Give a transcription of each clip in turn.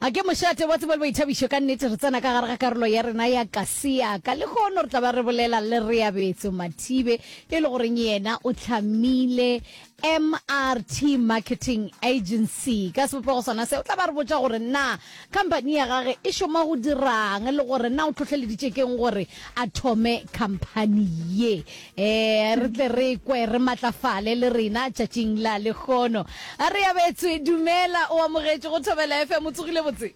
A ke mošate wa tsebo le boithabišo! Ka nnete, re tsena ka gare ga karolo ya rena ya Kasiaka. Lehono re tla ba re bolela le Reabetso Mathibe, e le goreng yena o hlamile MRT Marketing Agency. Ka sebopego sona se, o tla ba re botša gore na khamphani ya gage e šoma go dira'ng le gore na o hlohleleditše ke'ng gore a thome khamphani ye. Ee, re tle re kwe re matlafale le rena tšatšing la lekgono. A re abetswe, dumela, o amogetše go Thobela FM, o tsogile botse?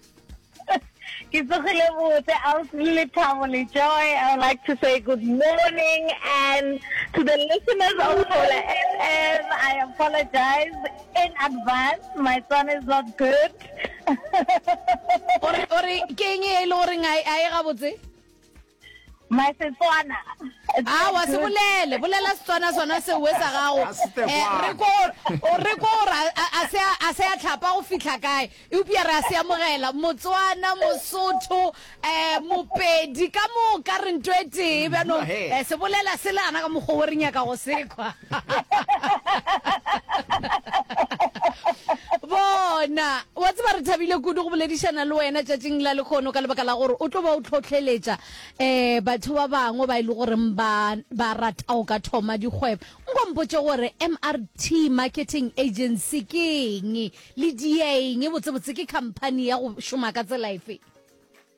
Ke tsogile botse, Ausi Lethabo le Joy. I would like to say good morning and to the listeners of Thobela FM, I apologize in advance, my son is not good. Ore, ore, ke eng e le goreng a e ga botse? My Setswana. Awa se bolele, bolela Setswana sona se we sa gago. Eh, re ko re ko ra a se a se a tlhapa go fihla kae. E upia re a se amogela Motswana, Mosotho, eh Mopedi ka mo ka re ntwe tee ba no eh se bolela se le ana ka mogobo re nyaka go sekwa. bona wa tseba re thabile kudu go boledišana le wena tšatšing la lekgono ka lebaka la gore o tlo ba o tlhotlheletša um batho ba bangwe ba e le goreng ba ba rata go ka thoma dikgwebo nkompotse gore mrt marketing agency ke eng le dieng botsebotse ke company ya go šoma ka tsela efe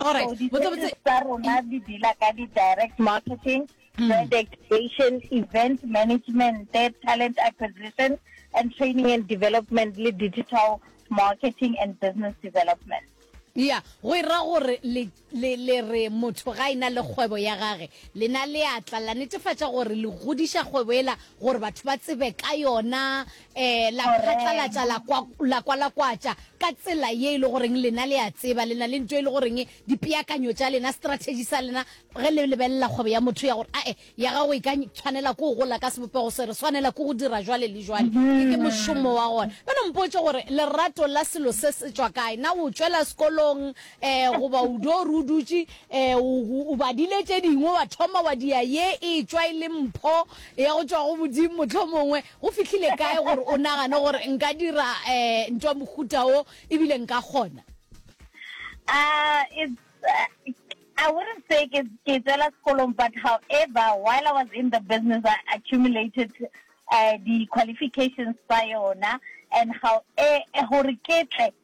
All right. So, di-service tsa rona di deala ka di-direct marketing, mm. brand activation, event management, talent acquisition, and training and development, le digital marketing and business development. ya go e ra gore le re motho ga ena le kgwebo ya gage lena le atla la netefatša gore le godiša kgwebo ela gore batho ba tsebe ka yona Ee, la phatlalatša la kwa, la kwalakwatša ka tsela ye e le goreng lena le a tseba lena le nto e le goreng dipeakanyo tša lena, strategy sa lena ge le lebelela kgwebo ya motho ya gore ae ya gago e ka tshwanela ke go gola ka sebopego se re swanela ke go dira jwale le jwale, ke ke mošomo wa gona. Bjalo mpotše gore lerato la selo se se tšwa kae? Na o tšwela sekolong um goba o do re o dutše um o, o badile tše dingwe wa thoma wa dia ye e tšwa e le mpho ya go tšwa go Modimo mohlomongwe Go fihlile kae gore o nagane gore nka dira um ntwa mohuta o ebile nka kgona? Uh, it's, uh, I wouldn't say ke ke tswela sekolong, but however, while I was in the business, I accumulated uh, the qualifications by yona, and how eh, eh gore ke tle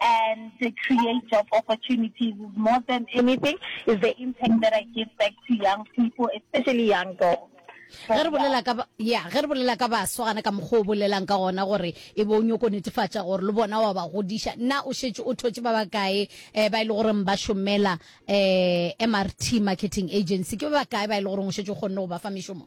and to create job opportunities is more than anything is the impact that I give back to young people, especially young girls. ge re bolela ka ya ge re bolela ka baswa gana ka mokgwa o bolelang ka gona gore e be o nyoko netefatša gore le bona wa ba godiša nna o šetše o thotše ba bakae um ba e le goreng ba šomela um eh, mrt marketing agency ke ba bakae ba e le goreng o šetše o kgonne go ba fa mešomo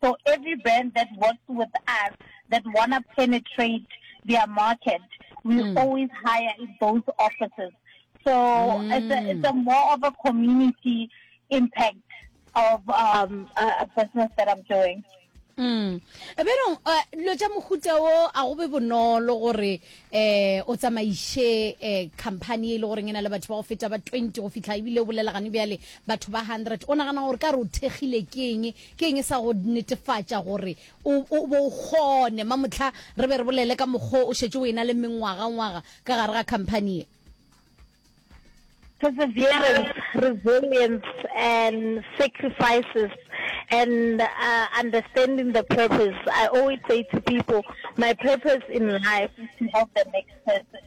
So every band that works with us that want to penetrate their market, we mm. always hire in those offices. So mm. it's, a, it's a more of a community impact of um, a, a business that I'm doing. Mm. Berong, uh, lo tša mohuta wo a go be bonolo gore eh o tsamaiše eh company e le gore e na le batho ba go feta ba 20 go fihla ebile o bolela gane bjale batho ba 100 o nagana gore ka re o thekgile ke eng Ke eng e sa go netefatša gore o, o bo o kgone? Ma mohla re be re bolele ka mokgwa o šetše o ena le mengwagangwaga ka gare ga khamphani ye. Perseverance, resilience, and sacrifices, and uh, understanding the purpose. I always say to people, my purpose in life is to help the next person.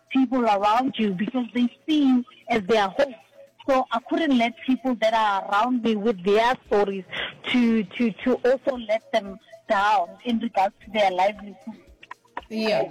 people around you because they see you as their hope so I couldn't let people that are around me with their stories to to to also let them down in regards to their livelihood yeah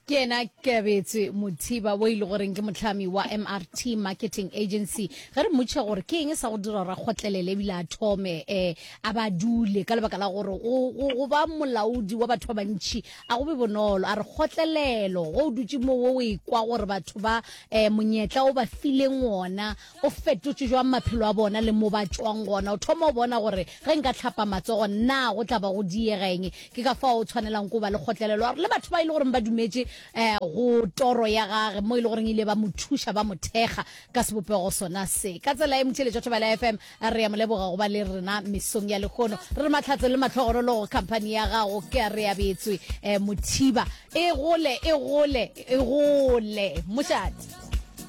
ke ena kebetse mothiba o ile goreng ke motlhami wa mrt marketing agency ge re mmotšhe gore ke eng sa go dira ra kgotlelele ebile a thome um a ba dule ka lebaka la gore go ba molaodi wa batho ba bantšhi a go be bonolo a re kgotlelelo go o dutse mo wo o ekwa gore batho ba um monyetla o ba fileng ona o fetotse jwang maphelo a bona le mo ba tswang gona o thoma o bona gore ge nka tlhapa matsogo nna go tla ba go diegeng ke ka fa o tshwanelang ko ba le kgotlelelo a re le batho ba e le goreng ba dumetse um go toro ya gage mo e le goreng ile ba mo thuša ba mo thekga ka sebopego sona se ka tsela e motšheletšo thobela fm A re a mo leboga go ba le rena mesong ya lekgono. Re mahlatse le matlhogorolo go khamphani ya gago ke a re abetswe eh, mothiba e gole e gole e gole mošate.